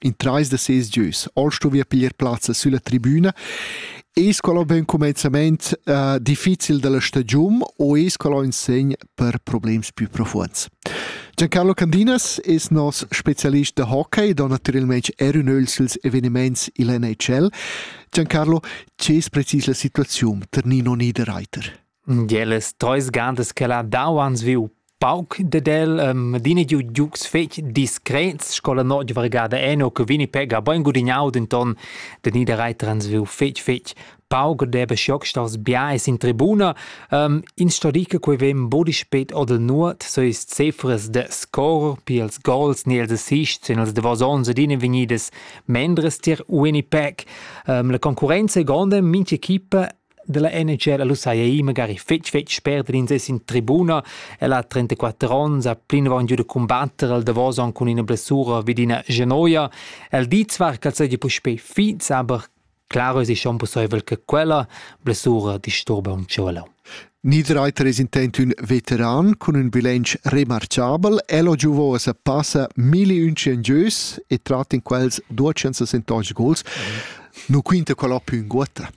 in trais da ses gieus. All stuvia piglier plazza sulla tribuna Es qual ho ben cumenzament uh, difficil dalla stagiun o es qual ho in segn per problems più profuonds? Giancarlo Candinas es nos specialist da hockey ed ho naturalmente er un öl suls eveniments il NHL. Giancarlo, ce es precis la situaziun ter Nino Niederreiter? Gelas treis gantas ch'el ha dau ans viu pauc dad el, adina giu giugs fetg discrets sco la notg vargada eno che Winnipeg ha bein gudignau, denton da Niederreiter ans viu fetg fetg pauc ed deva schiocksters biais in tribuna. ins sto dir che quei vegn buca spet oder nuot, so is cefras da score pia ils gols ni ils assists en ils davos onns adina vegnidas mendras tier Winnipeg. la concurrenza è gronda, mintga equipa della NHL lu sai ei magari fetg fetg spert ins es in tribuna el ha 34 ons ha plinavon giu da combatter al Davos aunc cun ina blessura vid ina genoia el di zwar che el seigi puspei fiz aber Claro es schon pusseivel che quella blessura disturba un cielo. Niederreiter es intent ün veteran cun ün bilanc remarchabel. El ho giovò a passa milli unchen gieus e trat in quels 270 gols. Nu quinta quella più in guota.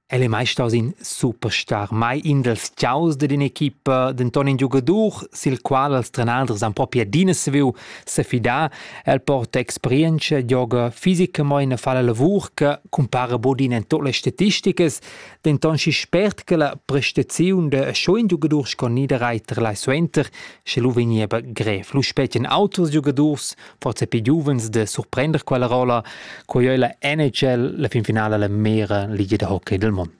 El è mai staus in superstar, mai in dals tgiaus dad in'equipa, denton in giugadur, sil qual els trenaders han propi adina saviu sefidar. El porta experienza, gioga fisicamein e fa la lavur che cumpara bod in en tut las statisticas, denton schi spert che la prestaziun da schon in giugadur sco Niederreiter lai suenter, sche lu vegniva grev. Lu spetgan auters giugadurs prozepi giuvens de surprender quella rolla, quei ei la NHL la finfinala la mera liga de hockey del mondo.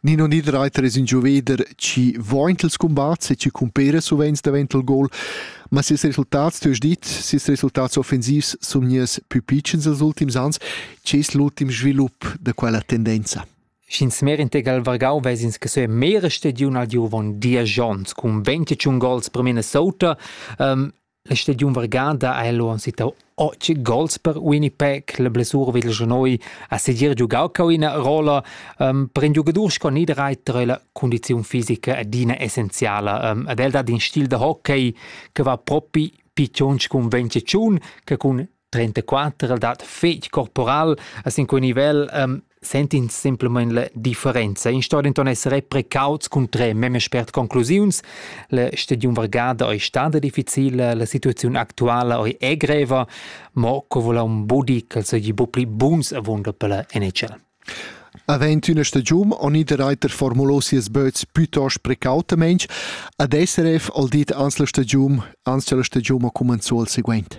Nino Niederreiter es in gioveder ci voint els combats e ci cumpera sovens davent il gol, ma ses resultats, tu hast dit, ses resultats offensivs sun nies più pitschens els ultims ans. C'è es l'ultim svilup da quella tendenza? Sch'ins mer integral vargau vesins che se mere stediun al giovon Diajons cun 21 gols per Minnesota, um, La stagiun vargada ha el uonn sittau otg gols per Winnipeg. La blessura vid il genoi ha segir giugau cau ina rolla um, per in giugadur sco Niederreiter è la condiziun fisica adina essenziala. Um, ed el dat in stil da hockey che va propi pichons cun venticiun che cun 34 dat fetg corporal a sin quei nivel um, sentins semplamein la differenza. In sto denton essere precauts cun tre meme spert conclusiuns. La stadion vargada ei stada difficile, la situazione actuala ei è greva, mo co vola un budi che segi bu pli buns avunda per la NHL. Avent üna stagiun on id reiter formulo sias böts piuttost precautamente, ad SRF al dit ans la stagiun, ans la stagiun ha commenzò al seguente.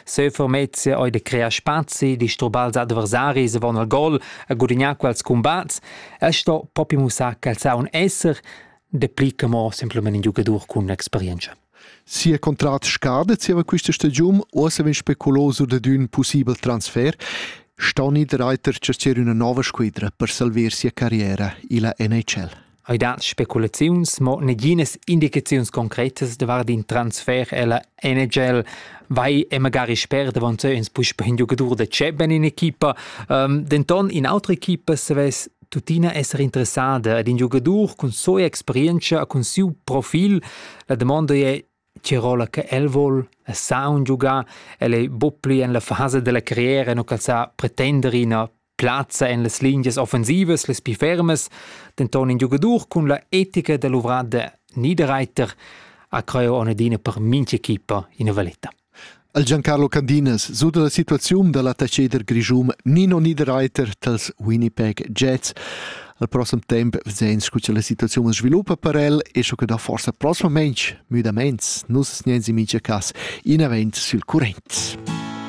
Sefermezia ei de crear spazi, disturbar ils adversaris avon al gol, a gudignar quels combats, e sto propi mussar che el sa un esser, de pli che mo semplament in giugadur cun experienza. Sia contrat scada zieva questa stagiun o se vegn speculaus dad ün possibel transfer, sta niederreiter cercer üna nova squadra per salver sia carriera illa NHL. Ei dat speculaziuns, mo naginas indicaziuns concretas davart in transfer ella NHL vai e magari sper davonzeu ins puspe in giugadur da Cheben in equipa. Um, denton in autra equipa savess tuttina esser interessada ad in giugadur cun soia experienza e cun siu profil. La domanda è Tirola che el vuol sa un giugar, el è buppli en la fase della carriera e non calzar pretendere in Plazza en las lingias offensivas las pli fermas, denton in giugadur cun la etica da luvrar de Niederreiter ha creu onadina per mintg'equipa ina valeta. El Giancarlo Candinas suda la situaziun da l'attacheder grischun Nino Niederreiter tals Winnipeg Jets. Al prossem temp vesein scu cha la situaziun as sviluppa per el e sco che da forsa prossimament müdaments nus sniensi mincha cas in event sül current.